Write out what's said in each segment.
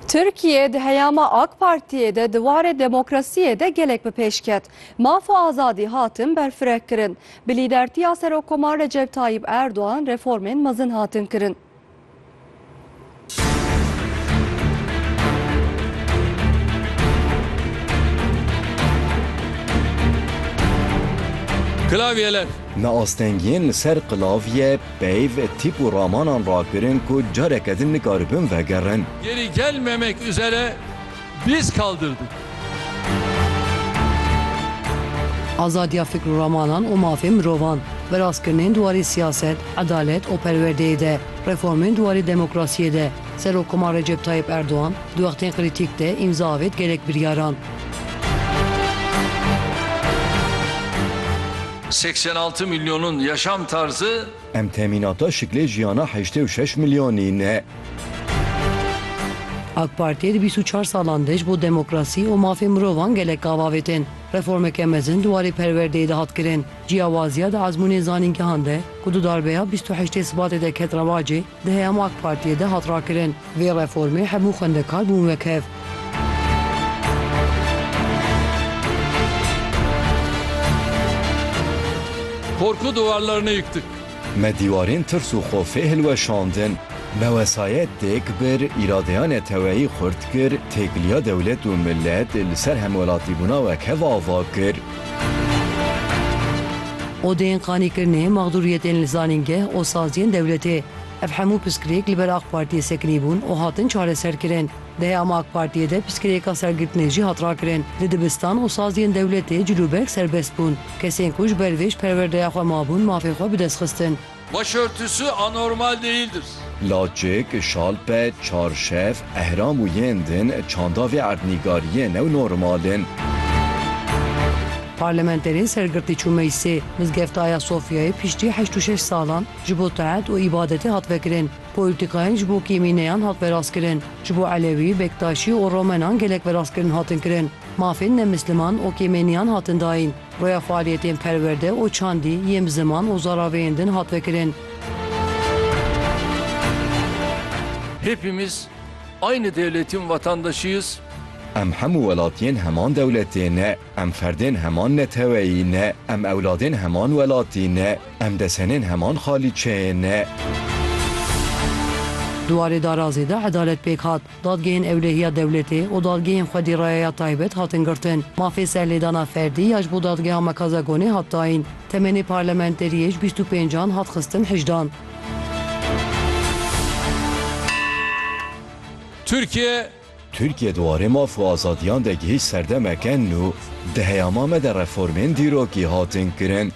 Tirkiye di heyama AK Partiyê de di warê demokrasiyê de gelek bi pêş ket. Maf û azadî hatin berfireh kirin. Bi lîdertiya Serokkomar Recep Tayyîp Erdogan reformên mezin hatin kirin. Klavyeler. Me astengiyên li ser klavye Peyv, tîp û ramanan rakirin ku careke din nikaribin vegerin. Geri gelmemek üzere diz kaldırdık. Azadiya fikr û ramanan û mafên mirovan, viraskirinên di warê siyaset, edalet û perwerdeyê de, reformên di warê demokrasiyê de, Serokkomar Recep Tayyip Erdogan di wextên krîtîk de îmza avêt gelek biryaran. Seksen altı milyonun yaşam tarzı. Em temînata şiklê jiyana heştê û şeş milyanî ne. AK Partiyê di bîst û çar salan de ji bo demokrasî û mafên mirovan gelek av avêtin. Reformeke mezin di warê perwerdeyê de hat kirin. Ciyawaziya di ezmûnên zanîngehan de ku du darbeya bîst û heştê Sibatê de ket rewacê, Di heyama ak Partiyê de hat rakirin vê reformê hemû xwendekar bûn wek hev. Korku duvarlarını yıktık. Me dîwarên tirs û xofê hilweşandin. Me wesayet têk bir, îradeya neteweyî xurt kir, têkiliya dewlet û milet li ser hemwelatîbûna wekhev ava kir. Odeyên qanîkirinê, maxdûriyetên li zanîngeh û saziyên dewletê. Ev hemû piskirêk li ber ak Partiyê sekinî bûn û hatin çareserkirin. Di heyama ak Partiyê de piskirêka sergirtinê jî hat rakirin. Di dibistan û saziyên dewletê cilûberg serbest bûn. Kesên ku ji ber vê ji perwerdeya xwe mabûn mafê xwe bi dest xistin. Başörtüsü anormal değildir. Laçik, Şalpe, Çarşev, Ehram û yên din çanda vê erdnîgariyê new normal in. Parlamenterên sergirtî çû meclisê Mizgefta Ayasofyayê piştî heşt û şeş salan ji bo teht û îbadetê hat vekirin. Polîtîkayên ji bo kêmîneyan hat verastkirin. Ji bo Elewî, Bektaşî û Romenan gelek verastkirin hatin kirin. Mafên nemisliman û kêmêniyan hatin dayîn. Rêya faaliyetên perwerde û çandî yên bi ziman û zaraveyên din hat vekirin. Hepimiz aynı devletin vatandaşıyız. Em hemû welatiyên heman dewletê ne, em ferdên heman neteweyî ne, em ewladên heman welatî ne, em desenên heman xalîçeyê ne. Di warê darazê de edalet pêk hat. Dadgehên Ewlehiya Dewletê û dadgehên xwedî rayeya taybet hatin girtin. Mafê serlêdana ferdî ya ji bo Dadgeha Mekaza Gonê hat dayîn. Temenê parlamenteriyê ji bîst û pênc an hat xistin hejdan. Tirkiye. Tirkiye di warê maf û azadiyan de gihîşt serdemeke nû. Di heyama me de reformên dîrokî hatin kirin.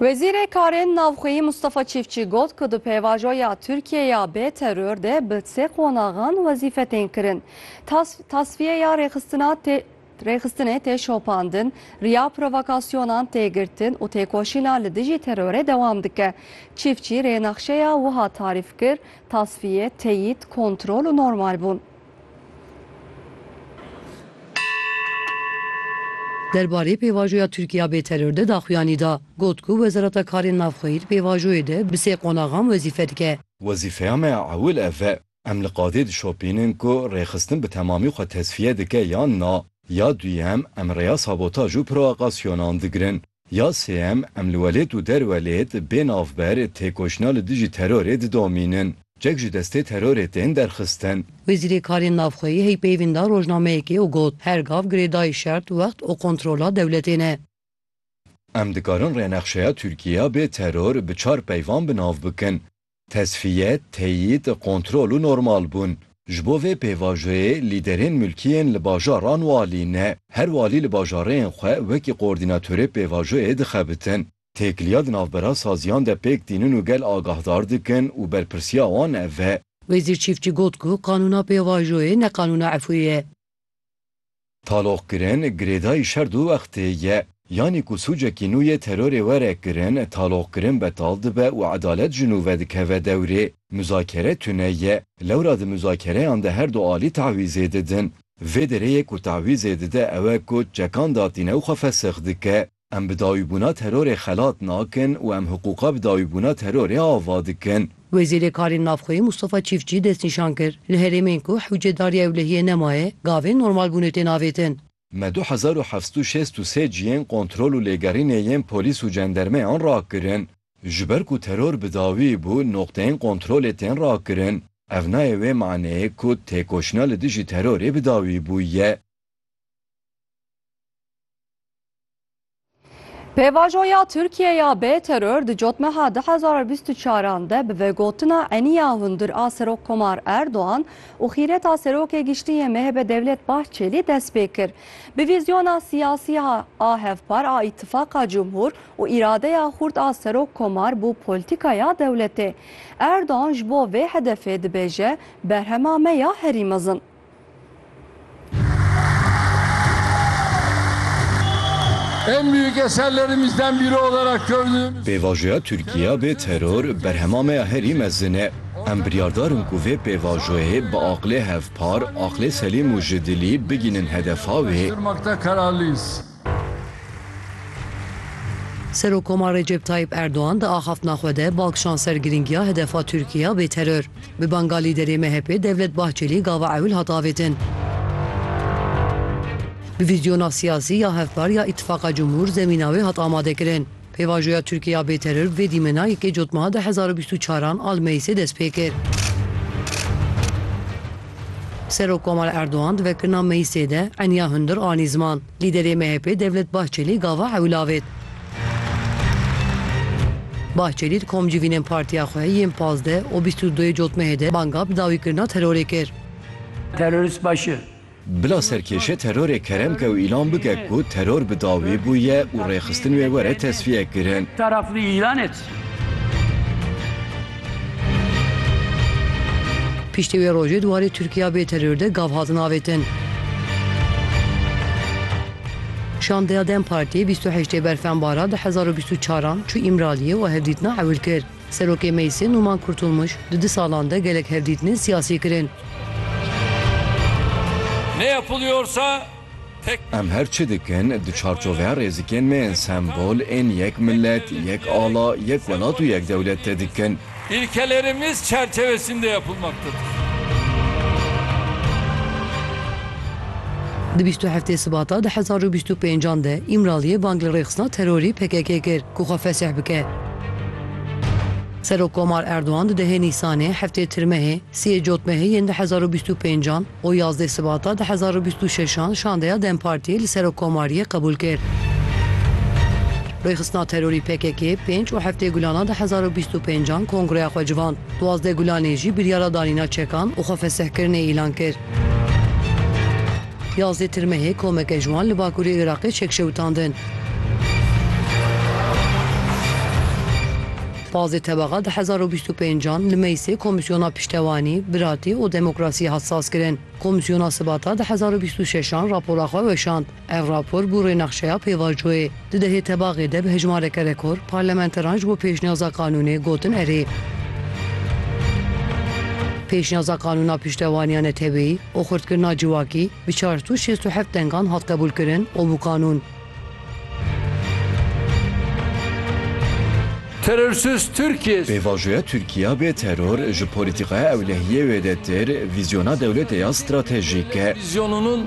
Wezîrê Karên Navxweyî Mustafa Çîfçî got ku di pêvajoya Tirkiyeyê ya bê teror de bi sê qonaxan wezîfe tên kirin. Tas, tasfiyeya rêxistina tê rêxistinê tê şopandin, riya provokasyonan tê girtin û têkoşîna li dijî terorê dewam dike. Çîfçî rênexşeya wiha tarîf kir, Tasfiye, teyîd, kontrol û normalbûn. Derbarê pêvajoya Tirkiye bê teror de daxuyanî da, got ku Wezareta Karên Navxweyî li pêvajoyê de bi sê qonaxan wezîfe dike. Wezîfeya me ya ewil ev e. Em li qadê dişopînin ku rêxistin bi temamî xwe tesfiye dike yan na. Ya duyem, em rêya sabotaj û provokasyonan digirin. Ya sêyem, em li welêt û derwelêt, bê navber, têkoşîna li dijî terorê didomînin. Çek ji destê terorê tên derxistin. Wezîrê Karên Navxweyî heyî peyvîn da rojnameyekê û got, Her gav girêdayî şert, wext û kontrola dewletê ne. Em dikarin rênexşeya Tirkîyeya bê teror bi çar peyvan bi nav bikin. Tesfiye, teyîd, kontrol û normal bûn. Ji bo vê pêvajoyê lîderên mulkiyên li bajaran walî ne, her walî li bajareyên xwe wekî koordînatorê pêvajoyê dixebitin. Têkiliya di navbera saziyan de pêk tînin û gel agahdar dikin û berpirsiya wan ev e. Wezîr Çîftçî got ku qanûna pêvajoyê ne qanûna Efûyê ye. Taloqkirin, girêdayî şer du wextê ye. Yanî ku sûcekî nû yê terorê were kirin, taloqkirin betal dibe û edalet ji nû vedikeve dewrê. Muzakere tune ye. Lewra di muzakereyan de her du alî tewîzê didin. Vê derê yê ku tewîzê dide ew e ku çekan datîne û xwe fesix dike. Em bi dawîbûna terorê xelat nakin û em hiqûqa bi dawîbûna terorê ava dikin. Wezîrê Karên Navxweyî Mustafa Çîftçî destnîşan kir, Li herêmên ku hewcedariya ewlehiyê nemaye, gavên normalbûnê tên avêtin. Me du hezar û heft û şêst û sê cihên kontrol û lêgerînê yên polîs û cendermeyan rakirin. Ji ber ku teror bi dawî bû, noqteyên kontrolê tên rakirin. Ev nayê wê maneyê ku têkoşîna li dijî terorê bi dawî bûye. Pêvajoya Tirkiye ya bê teror di cotmeha 2024 de bi vegotina eniya hundir a Serokkomar Erdogan û xîreta Serokê Giştî yê MHP Devlet Bahçelî dest pê kir. Bi vîzyona siyasî a hevpar a Îtîfaqa Cumhur û îradeya xurt a Serokkomar bo polîtîkaya dewletê. Erdogan ji bo vê hedefê dibêje, Berhema me ya herî mezin. En büyük eserlerimizden biri olarak gördüğümüz... Pêvajoya Tirkîya bê teror berhema me ya herî mezin e. Em biryardar in ku vê pêvajoyê bi aqlê hevpar, aqlê selîm û ji dilî bigînin hedefa wê. Serokkoma Recep Tayyîp Erdogan di axaftina xwe de bal kişand ser girîngiya hedefa Tirkiyê ya bêteror. Bi banga lîderê MHP'ê Devlet Bahçelî gava ewil hat avêtin. Bi vîzyona siyasî ya hevpar ya Îtîfaqa Cumhur zemîna wê hat amadekirin. Pêvajoya Tirkî ya bêteror vê dîmena yekê cotmeha du hezar û bîst û çar an a li Meyîsê dest pê kir. Serok Komal Erdogan di vekirina Meyîsê de eniya hundir anî ziman. Lîderê MHP'ê Devlet Bahçelî gava ew lavêt. Bahçelî di komcivînên partiya xwe yên pazdeh û bîst û duyê cotmehê de banga bi dawîkirina terorê kir. Terorîst baş e. Bila serkêşe terorê kerem ke û îlan bike ku teror bi dawî bûye û rêxistin wê were tesfiye kirin. Taraf li Îranê çi? Piştî wê rojê di warê Tirkiya bê teror de gav hatin avêtin. Şandeya dem Partiyê bîst û heştê berfenbara du hezar û bîst û çaran çû Îmraliyê û hevdîtina ewil kir. Serokê Meclisê Numan Kurtulmuş, Di du salan de gelek hevdîtinên siyasî kirin. Ne yapılıyorsa tek. Em her çi dikin di çarçoveya rêzikên me yên sembol ên yek millet, yek ala, yek welat û yek dewlet de dikin. İlkelerimiz çerçevesinde yapılmaktadır. Di bîst û heftê Sibata du hezar û bîst û pêncan de Îmraliyê bang li rêxistina terorî PKK'ê kir. ku xwe fesih bike. Serokkomar Erdogan di dehê Nîsanê, heftê Tirmehê, siyê Cotmehê yên du hezar û bîst û pêncan û yazdê Sibata du hezar û bîst û şeşan şandeya dem Partiyê li Serokkomariyê qebûl kir. Rêxistina terorî pkk-yê pênc û heftê Gulana du hezar û bîst û pêncan kongreya xwe civand. Duwazdeh Gulanê jî biryara danîna çekan û xwe fesihkirinê îlan kir. Yazê tirmehê komeke ji wan li bakurê Iraqê çekşewitandin. Pazê tebaxa du hezar û bîst û pênc an li meclsê Komîsyona Piştewanî, Biratî û Demokrasiyê hat sazkirin. Komîsyona Sibata du hezar û bîst û şeş an rapora xwe weşand. Ev rapor bû rênexşeya pêvajoyê. Di dehê tebaxê de bi hejmareke rekor parlamenteran ji bo pêşniyaza qanûnê gotin erê. Pêşniyaza qanûna piştevaniya neteweyî û xurtkirina civakî bi çar sed û şêst û heft dengan hat qebûlkirin û bû qanûn. Terörsüz Türkiye. Pêvajoya Tirkiya bê teror ji polîtîkaya ewlehiyê wê de tir, vîzyona dewletê ya stratejîk e. Vîzyonunun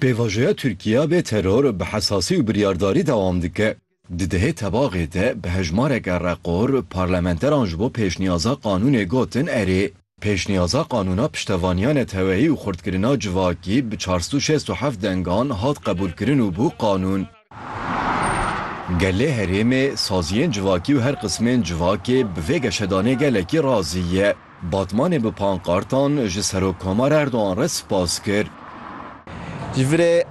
Pêvajoya Tirkiye bê teror bi hesasî û biryardarî dewam dike. Di dehê tebaxê de bi hejmareke reqor parlamenteran ji bo pêşniyaza qanûnê gotin erê. Pêşniyaza qanûna piştevaniya neteweyî û xurtkirina civakî bi çar sed û şêst û heft dengan hat qebûlkirin û bû qanûn. Gelê herêmê, saziyên civakî û her qismên civakê bi vê geşedanê gelekî razî ye. Batmanê bi pankartan ji Serokkomar Erdogan re spas kir. Ji virê